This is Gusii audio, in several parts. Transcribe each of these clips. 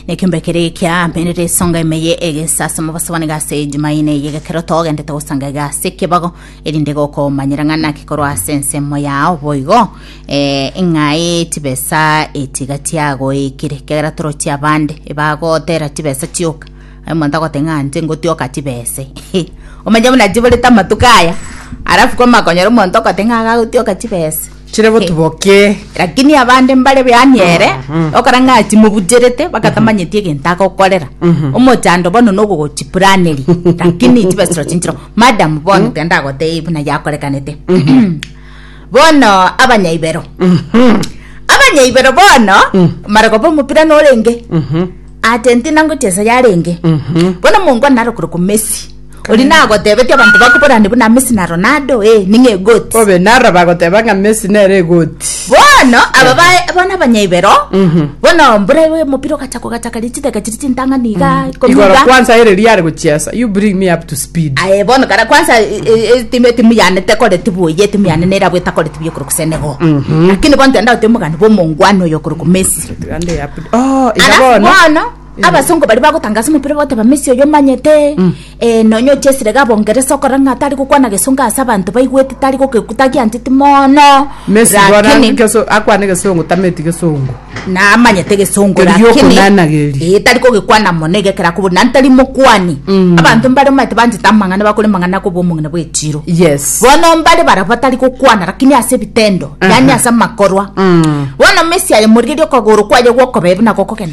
nekembe kere ekia merere esonga emeye egesasimo basabani gase ejumaine eye gekero togendete gosanga egase ekebago erinde gokomanyera ng'a naki korwa ase ensemo yao boigo eh, ng'ai chibesa etiga tiagoikire kegera torochi abande ebagotera chibesa chioka aye omonto agote ng'a nche ngotioka chibese omanye buna chiborete amatuko aya alafu kwamakonyora omonto ogote ng'a agagotioka chibese Chire botubokie. Lakini abande mbare beani ere, okora ng'a timobucherete, bagatamanyeti egento agokorera. Omochando bono nogogochipuraneria, lakini chibesero chinchera, madam bono tiga ndagotebie buna yakorekanete. Bono abanyaibero. Abanyaibero bono, mara koba omopira norenge, Argentina ngochia ensa yarenge. Bono mongo naro korokwa Messi. Oria nagotebetie abanto bakoborane buna Messi na Ronaldo, ee, ning'o egoti? Obe naro bagoteba ng'a Messi nere egoti. Bono aba bae bono abanyaibero bono mbura igo omopira ogacha kogachaka ri chidaka chiri chintang'ani iga ikomi Igoro iga kwanza ere riria are gochiesa, you bring me up to speed. aye bono kare kwansa e- e- e- timu etimu yane tekoreti buya etimu yane nerabwo etakoreti buya okorokwa Senegal lakini bono togenda goteeba omogani bwa omongwana oyo okorokwa Messi Ande up- Oh, iga Alafu bono. bono abasongo bari bagotanga ase omopira bagoteba messi oyo omanyete eh, nonya oche esire ga bongeresa okora ng'a tari gokwana gesongo ase abanto baigwete tari goke- tagiancheti mono Messi gora lakini geso akwane gesongo tameti gesongo. namanyete gesongo Keri lakini giokonanageri. eh, tari kogekwana mono egekera kobori nani tari mokwani abanto mbare omanyete banchete amang'ana bakore mang'ana kobo omong'ina bwechiro Yes. bono mbare bara batari gokwana lakini ase ebitendo yani ase amakorwa bono messi aye morigerie okogoro kwaye gwokobebe nako kogenda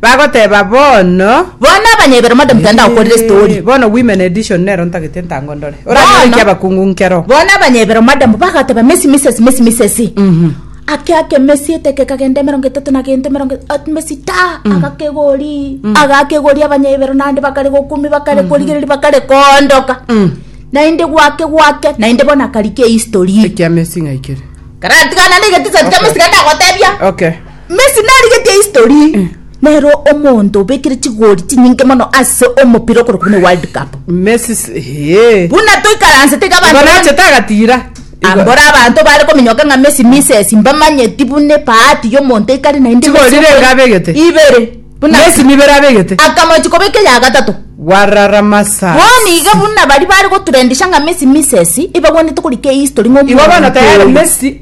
Bagoteba bono. Bono abanyebero mode motenda gokorera estori. Ee, bono women edition nero ntagete ntango ndore. Oranyore Bono- ekiabakungu nkero. Bono abanyebero mode mbo bagoteba mesi misesi mesi misesi. Ake ake mesi eteke kagenda emerongo etato na gento emerongo etato mesi ta agakegori agakegori abanyebero nande bakare gokumi bakare korigereri bakare koondoka. Naende gwake gwake naende bono akarika ehistory. Ekia mesi ng'ai kere? Karatigana na egetisa kia mesi kende agotebia. Okay. Messi narigetie history. Nere omonto obekire chigori chinyinge mono ase omopira okorwa buna World Cup. Messi s- eh. Buna toikaransete iga Igo abanto nachete agatira. Igo- Ambora abanto bare kominyoka ng'a Messi misses mbamanyeti buna ebahati y'omonto ekare naende Chigori Messi renge okore- abegete. Ibere. Buna Messi nibere abegete. akamochi kobeka eya gatato. Warara masa. Bono iga buna bari bare gotrendisha ng'a Messi misses ebagwenerete korika ehistory ng'a Igo bono omonto tayari oyo. Messi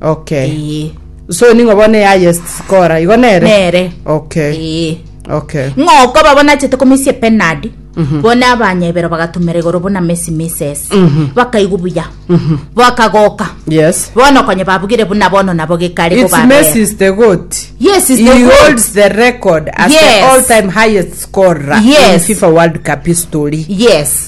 okay Ee. so ning'o bono eyayest skora igo nere Nere. okay Ee. okay ng'oko babo nachete komisia penadi bona abanyebero bagatumera igoro buna mesi mises bakaigu buya bakagoka yes bono konye babugire buna bono nabo gekare It's Messi is the goat. Yes, he's he the goat. holds the record as Yes. the all-time highest scorer Yes. in FIFA World Cup history. yes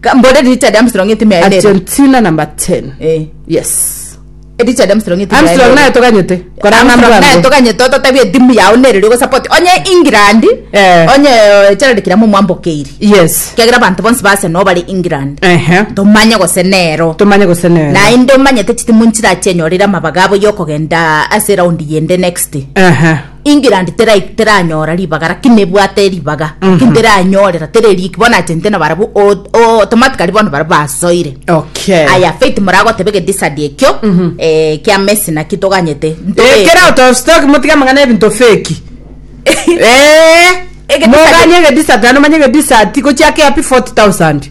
Ka- mbore richa ria Armstrong etime yaye rero. argentina number 10 Eh, yes ericha ria Armstrong etime yaye armstrong rero. naye toganyete korana Armstrong naye mbwango toganyete ototabia etimu yao nere ri ogosapoti onye england Eh. onye eh, gerald kiramo mwambokeiri yes kiagera abanto bonsi base no bare england ehe tomanye gose nero tomanye gose nero naende omanyete chitimu nchirachenyore ere amabaga abo yokogenda ase eraundi yende next ehe England tera- teranyora ribaga lakini nebwate ribaga lakini teranyorera tere riik bono achente na barabwo o- o- automatically bono barabwo basoire okay aya faith moragoteba egedisadi ekio eh, kia messi naki toganyete Eh, Ntobe- kera out of stock motige amang'ana ebinto feki Eh, Egedisati- moganye egedisati naende omanye egedisati gochiake happy 40000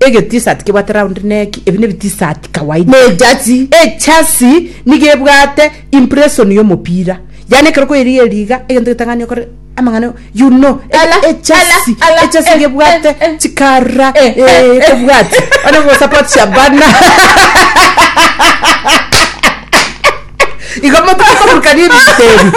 Egetisati kebwate round neki, ebi nebitisati kawaida. Ne ejersey, ejersey nigo ebwate impression yomopira, yaani ekero okoyerigia eriga egento getang'ani okore amang'ana you know ejersey ejersey nigo ebwate chikara eeh kobwati one gosupport Shabana igo motokoburukania ebinto ebi.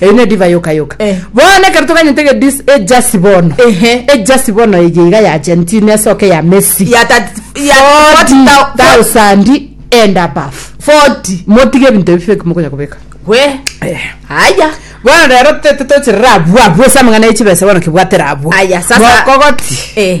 Eyi nedivai yoka yoka. Bono ekero toganyete ege dis ejasi bono. Ehe. Ejasi bono eye iga ya Argentina esoke ya Messi. Ya tat ya Forty thou fo thousand and above. Forty. Motige ebinto ebi fake mokonya kobeka. We. Aya. Bono rero tete tocherere abwo abwo ase amang'ana ye chibesa bono kebwatera abwo. Aya sasa. Mokogoti. Eh.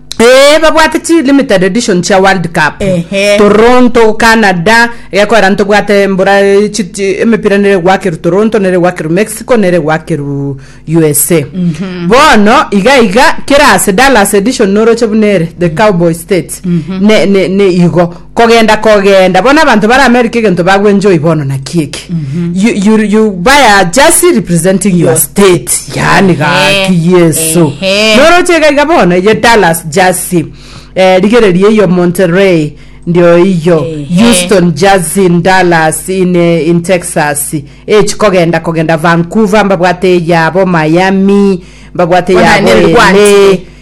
Ee babwate chi limited edition chia world cup Ehe. toronto canada egekorera ntobwate mbora eh, chi- chi- emepira nere gwakeru toronto nere gwakeru mexico nere gwakeru usa bono iga iga kera ase dallas edition noroche buna ere the cowboy state ne, ne, ne igo kogenda kogenda bono abanto bare america egento bagwenjoy bono naki eke you, you, you buy a jersey representing your state yani gaki yesu Ehe. noroche gaiga bono eye dallas jersey eh, rigereria iyo monterey ndio iyo Ehe. houston jersey in dallas in, eh, in texas echi kogenda kogenda vancouver mbabwate eyabo miami mbabwate Bono eyabo nere LA. gwanchire.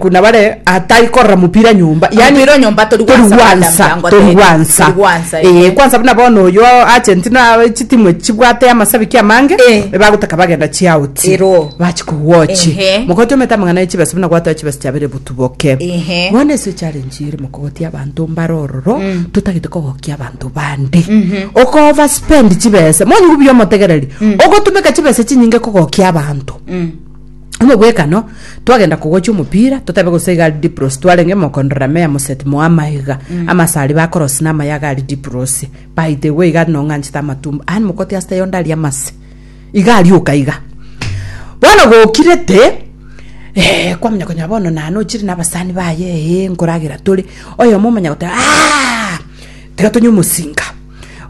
Kuna bare atai korora mupira nyomba yani ro nyomba tori gwansa tori gwansa eh kwansa buna bono oyo Argentina awe chitimu chibwate amasabiki amange bagotaka bagenda chi out bachi ku watch mokoti ometa mangana chibesa buna gwata chibesa chabere butuboke bono ese challenge ere mokoti abanto mbare ororo totagete kogokia abanto bande oko over spend chibesa monye obuya omotegereri ogotumeka chibesa chinyinge kogokia abanto. Omobwekano, twagenda kogocha omopira, totabe gose iga Diplos, twarenge mokondo Ramea Moset Moama iga, amasari ba Koros na amayaga aria Diplos, baite igwe iga nong'anchete amatumbo, aye mokoti asete yonde aria amase, iga arioka iga. Bono gokirete, eh, kwamanya konya bono nane ochire na abasani baye, eh, nkoragera tore, oyomo omanya goteba, aah, tiga tonye omosinga.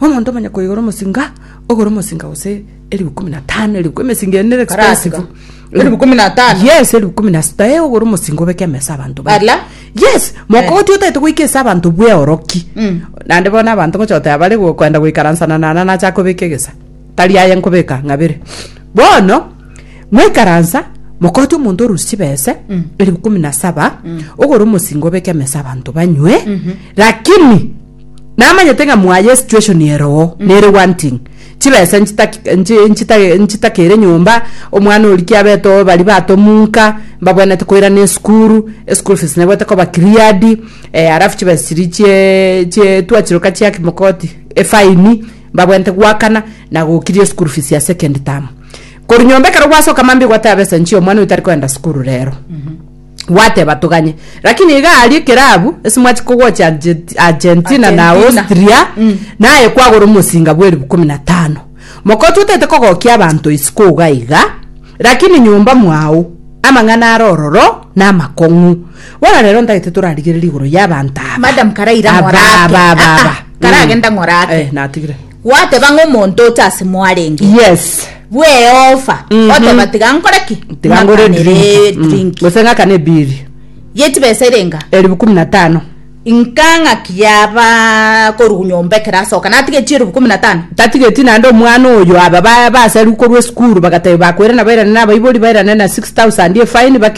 Omonto omanya koigora omosinga, ogore omosinga gose. Elifu kumi na tano, elifu kumi emesingo eye nere Karasiga. expensive. Elifu kumi na tano. Yes, elifu kumi na sita ee ogore omosingo obeke ime ase abanto baye. Ala. Yes, mokoti otaete goika ase abanto bweoroki. Mm. Naende bono abanto ngocha goteba bare go- kwenda goikaransana nana nacha kobeka egesa. Tari aye nkobeka ng'abere. Bono, mwaikaransa, mokoti omonto orusie chibese, elifu kumi na saba, ogore omosingo obeke ime ase abanto banywe, lakini, Namanyete ng'a mwaye situation ere oo nere wanting chibesa nchitakeire nyomba omwana oria kiabete oo baria batomunka mbabwenete koirana esukuru eschool fees nebwete koba cleared eh alafu chibesa chiria chie chie twachiroka chia kimokoti efaini mbabwenete goakana na gokiria eschool fees ya second term korwa nyomba ekero gwasoka mambia ogoteba besa nchie omwana oyo tari koenda sukuru rero. gwateba toganye lakini iga aria ekerabu ase mwachia kogocha Argent- argentina na Argentina. austria naye kwagora omosinga bwa eribu komi na tano moka ototete kogokia abanto isiko iga iga lakini nyomba mwao amang'ana are ororo na amakong'u bono rero ntagete torarigereri igoro ya abanto aba madam karaira Aba, ng'ora ake aba, aba, Ah, ah, aba. karagenda Mm. ng'ora ake Eh, natigire Gwateba ng'a omonto oche ase mwarenge. Yes. Bw'Yehova, oteba, Tiga nkore ki? Mm-hmm. Tiga ngore Ng'akanere drink. Mm. drink. Gose ng'akane biri. Ye chibesa ere enga? Elifu kumi na tano. Inka ng'aki yaba korwa nyomba ekero asoka, natige chielufu kumi na tano? tatigeti naende omwana oyo aba ba- basariu korwa esukuru bagateba bakoirana bairane nabaibori bairane na 6000 efine baki